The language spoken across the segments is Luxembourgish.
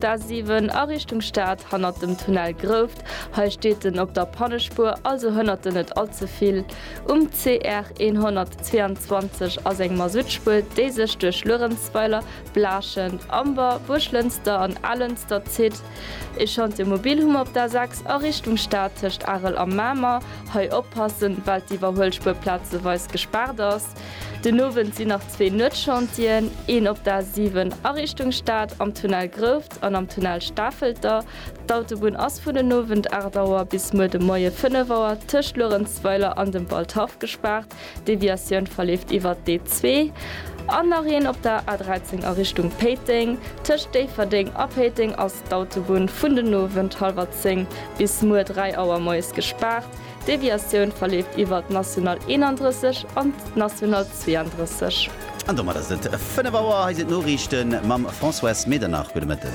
D'A7 a Richtung Stad, hannert dem Tunnel Grouft. Hei steet en op der Pannespuer, also hënnert en net all ze vill. Um CR 122 ass eng Masuttspuer, déi sech duerch Luerenzweiler, Blaaschent, Amber, Buerglënster an Alënster zitt. Ee Chantier mobil hu mer op d'A6 a Richtung Stad tëscht Arel a Mamer. Hei oppassen, well d'Iwwerhuelspuer plazeweis gespaart ass. Den Owend sinn nach zwee Nuetschantien, een op der A7 a Richtung Stad am Tunnel Grouft an am Tunnel Stafelter. D'Autobunn ass vun den Owend 8 Auer bis muer de Moie 5 Auer tëscht Luerenzweiler an dem Waldhaff gespaart, d'Deviatioun verleeft iwwert d'E2. An nach een op der A13 a Richtung Péiteng. Tëscht Déifferdeng a Péiteng ass d'Autobunn vun den Owend hallwer 10 bis muer 3 Auer moies gespaart. D'Deviatioun verleeft iwwer d'National 31 an d'National 32. An domat ass et 5 Auer. Hei sinn d'Noriichte mam Françoise Medernach. Gudde Mëtten.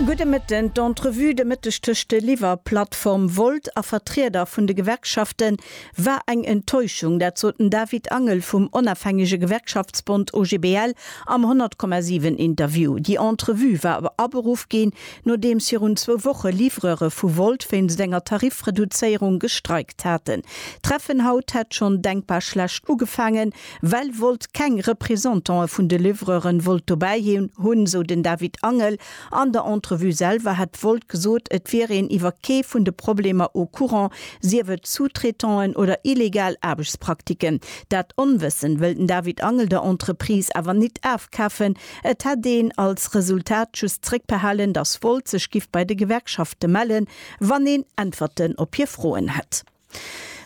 Gudde Mëtten. D'Entrevue de Mëtteg tëscht de Liwwer Plattform Volt a Vertrieder vun de Gewerkschafte war eng Enttäuschung. Dat sot den David Angel vum onafhängege Gewerkschaftsbond OGBL am 100,7 Interview. Déi Entrevue war aberuff ginn, Nodeems virun zwou Woche Livreure vu Volt wéinst enger Tarifreduzéierung gestreikt haten. D'Treffen haut hätt schonn denkbar schlecht ugefaangen, well Volt keng Representantë vun de Livreuren wollt dobäi hunn, sou den David Angel. An der Entrevue selwer hätt Volt gesot, et wier een iwwer kee vun de Problemer au courant, sief et Sous-traitanten oder illegal Aarbechtspraktiken. Dat Onwëssen wëll den David Angel der Entreprise awer nit afkafen, Et hätt een als Resultat just zréckbehalen, datt Volt sech giff bei de Gewerkschafte mellen, wann een Äntwerten op hir Froen hätt.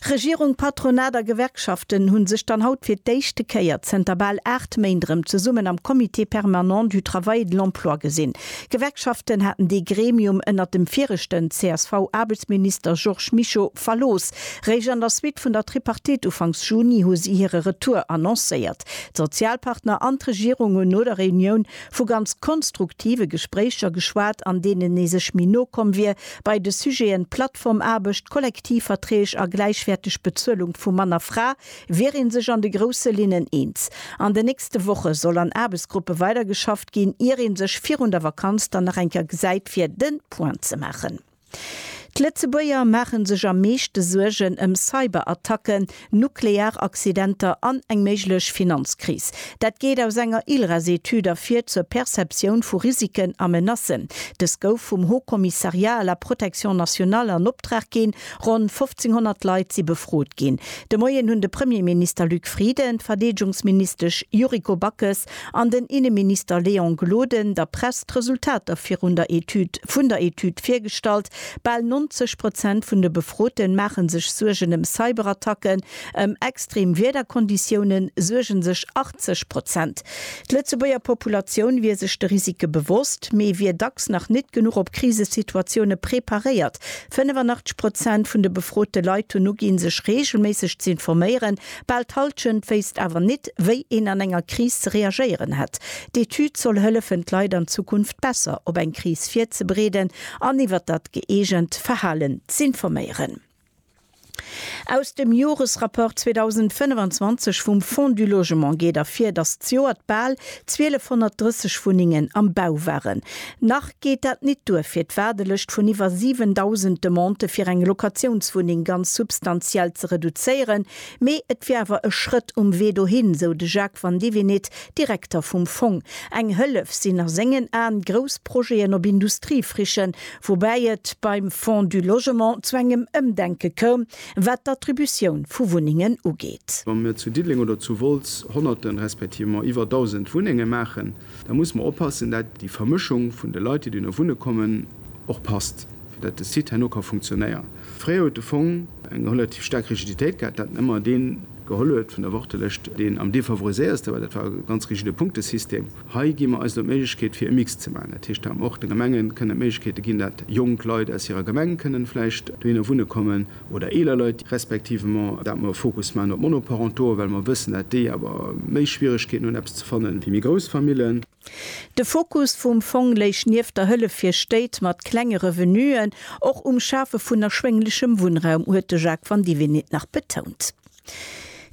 Regierung, Patronat a Gewerkschaften hu sech dann haut fir d'éischte Kéier zënter bal 8 Méint erëm zesummen am Comité permanent du travail et de l'emploi gesinn. D'Gewerkschaften haten dee Gremium ënnert dem viregten CSV-Aarbechtsminister Georges Mischo verlooss. Réischt an der Suite vun der Tripartite ufanks Juni hu si hire Retour annoncéiert. D'Sozialpartner an d'Regierung hunn no der Reunioun vu ganz konstruktive Gespréicher geschwat, an deenen ee sech méi no komm wier bei de Sujeten Plattformaarbecht, Kollektivverträg a gläichwäerteg Bezuelung vu Mann a Fra, wier ee sech an de grousse Linnen eens. An den nächste Woche soll an Aarbechtsgruppe weidergeschafft ginn, ier ee sech virun der Vakanz dann nach eng Kéier gesäit, fir de Point ze maachen. D'Lëtzebuerger maache sech am meeschte Suergen ëm Cyberattacken, nuklear Accidenter an eng méiglech Finanzkris. Dat geet aus enger ILRAS-Etüd ervir zur Perceptioun vu Risiken a Menacen. Dës gouf vum Haut Commissariat à la protection nationale an Optrag ginn. Ronn 1.500 Leit si befrot ginn. De Moien hunn de Premierminister Luc Frieden, d'Verdeedegungsministesch Yuriko Backes, an den Inneminister Léon Gloden der Press d'Resultater virun der Etüd vun der Etüd virgestallt. Bal 90 Prozent vun de Befroten maache sech Suergen ëm Cyberattacken. Ëm extrem Wiederkonditioune suerge sech 80 Prozent. D'Lëtzebuerger Populatioun wier sech de Risike bewosst, mee wier dacks nach nit genuch op Krisesituatioune preparéiert. 85 Prozent vun de befrote Leit hunn uginn, sech reegelméisseg z'informéieren Bal d'Halschent wéisst awer nit, wéi een an enger Kris ze reagéieren hätt. D'Etüd soll hëllefen, d'Leit an Zukunft besser op eng Kris virzebereeden an iwwer dat gëeegent Verhalen z'informéieren. Aus dem Joresrapport 2025 vum Fonds du Logement geet ervir, datt d'Joert bal 1.230 Wunnengen am Bau waren. Nach geet dat nit duer fir d'Waardelëscht vun iwwer 7.000 Demandë fir eng Locatiounswunneng ganz substantiell ze reduzéieren, mee et wier awer e Schrëtt um Wee dohin, sou de Jacques Van Divinit, Direkter vum Fong. Eng Hëllef sinn a sengen Aen grouss Projeten op Industriefrichen, woubäi et beim Fonds du Logement zu engem Ëmdenke koum, wat d'Attributioun vu Wunnengen ugeet. Wa mir zu Diddeleng oder zu Wolz Honnerte respektivement iwwer Dausend Wunnenge maachen, Da musse mer oppassen, dat déi Vermëschung vun de Leit, déi duerno wunne kommen, och passt, fir dat de Site herno ka funktionéieren. Fréier huet de Fong eng relativ staark Rigiditéit gehat, dat en ëmmer dee geholl huet vun der Wartelëscht, deen am defavoriséierste war. Dat war e ganz rigide Punktesystem. Hei gi mer eis elo d'Méiglechkeet, fir e Mix ze maachen. Dat heescht, da och de Gemenge kënnen d'Méiglechkeete ginn, dat jonk Leit aus hirer Gemeng kënnen vläicht dohinner wunne kommen. oder eeler Leit, respektivement dat mer e Fokus maachen op d'Monoparentoen, well mer wëssen, dat déi awer méi Schwieregkeeten hunn, eppes ze fannen, wéi méi grouss Famillen. De Fokus vum Fong léich nieft der Hëllef fir Stéit mat klenge Revenuen och um Schafe vun erschwénglechem Wunnraum, huet de Jacques Vandivinit nach betount.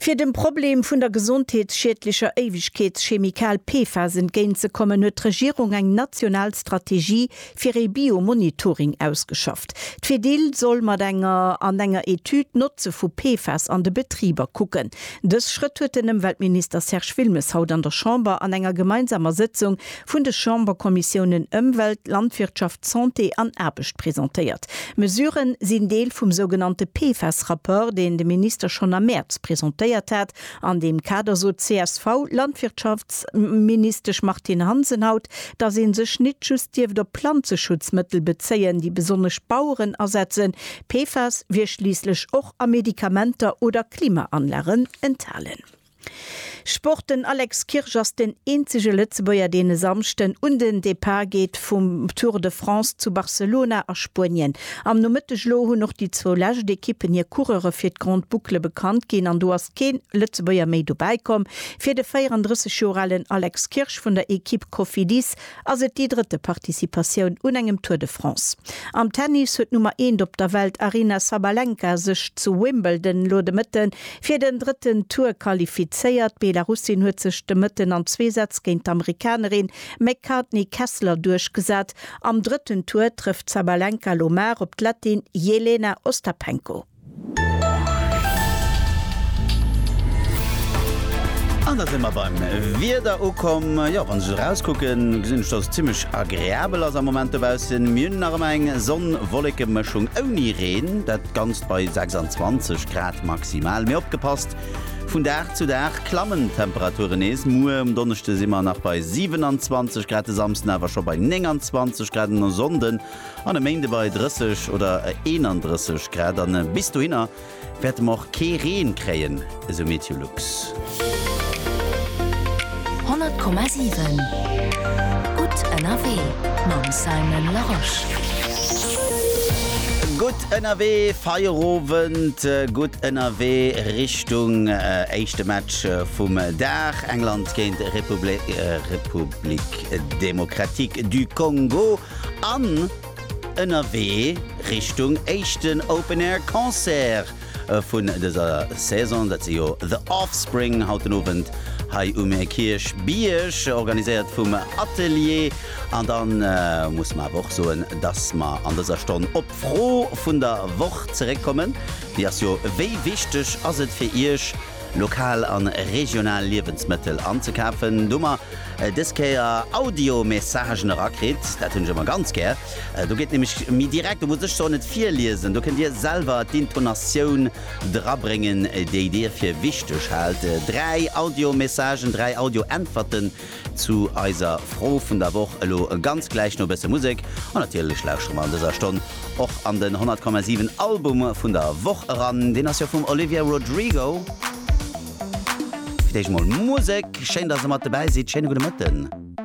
Fir dem Problem vun der gesondheetsschiedlecher Éiwegkeetschemikal PFAS entgéint ze kommen, huet d'Regierung eng national Strategie fir ee Biomonitoring ausgeschafft. D'Fedil soll mat enger an enger Etüd d'Notze vu PFAS an de Betriber kucken. Dës Schrëtt huet den Ëmweltminister Serge Wilmes haut an der Chamber an enger gemeinsamer Sëtzung vun de Chamberkommissiounen Ëmwelt, Landwirtschaft, Santé an Aarbecht presentéiert. D'Mesurë sinn Deel vum sougenannte PFAS-Rapport, deen de Minister schonn am Mäerz presentéiert hat. An deem Kader sot d'CSV-Landwirtschaftsministesch Martine Hansen haut, datt ee sech nit just dierft op Planzeschutzmëttel bezéien, déi besonnesch Baueren asetzen. PFAS wier schliisslech och a Medikamenter oder Klimaanlagen enthalen. Sport, Den Alex Kirsch ass den eenzege Lëtzebuerger, deen e Samschden un den Depart geet vum Tour de France zu Barcelona a Spuenien. Am Nomëtteg elo hunn och déi zwou lescht Ekippen hir Coureure fir d'Grande Boucle bekannt ginn an do ass keen Lëtzebuerger méi dobäi komm. Fir de 34 Joer alen Alex Kirsch vun der Ekipp Cofidis ass et déi drëtte Participatioun un engem Tour de France. Am Tennis huet d'Nummer eent op der Welt Aryna Sabalenka sech zu Wimbledon elo de Mëtte fir den drëtten Tour qualifizéiert. D'Belarussin huet sech de Mëtten an zwee Sätz géint d'Amerikanerin McCartney Kessler duerchgesat. Am drëtten Tour trëfft d'Sabalenka elo mar op d'Lettin Jelena Ostapenko. An da si mer beim Wieder ukomm. Jo, wann ech esou erauskucken, gesinn ech, dass et zimmlech agreabel ass am Moment dobaussen. Mir hunn nach ëmmer eng Sonn-Wolleke-Mëschung ouni Reen, dat Ganzt bei 26 Grad maximal. Mee opgepasst, vun Dag zu Dag klammen d'Temperature nees. Muer um Donneschde si mer nach bei 27 Grad, de Samsden awer scho bei 29 Grad an e Sonnde An e Méinde bei 30 oder 31 Grad an bis dohinner wäerte mer och kee Reen kréien, esou Meteolux. 100,7 Gutt ënnerwee mam Simon Larosche. Gutt ënnerwee, Feierowend, gutt ënnerwee Richtung éischte Match vum Dag, England géint République démocratique du Congo. an ënnerwee Richtung éischten Open Air Concert vun dëser Saison. Dat si jo The Offspring haut den Owend hei um Kierchbierg, organiséiert vum Atelier. An da musse mer awer och soen, dass mer an dëser Stonn op d'Fro vun der Woch zeréckkommen. Déi ass jo, Wéi wichteg ass et fir Iech, lokal an regional Liewensmëttel anzekafen, do mer des Kéier Audio-Messagen erakritt, dat hunn ech ëmmer ganz gär, do geet nämlech méi direkt, do muss ech se och net virliesen, do kënnt dir selwer d'Intonatioun drabréngen, déi dir fir wichteg haalt, 3 Audio-Messagen, 3 Audio-Äntwerten. Zu eiser Fro vun der Woch elo ganz gläich no e bësse Musek. An natierlech lauschere mer an dëser Stonn och an den 100,7 Album vun der Woch eran. Deen ass jo vum Olivia Rodrigo. Fir d'éischt mol Musek. Schéin, dass der mat dobäi sidd. Schéine gudde Mëtten.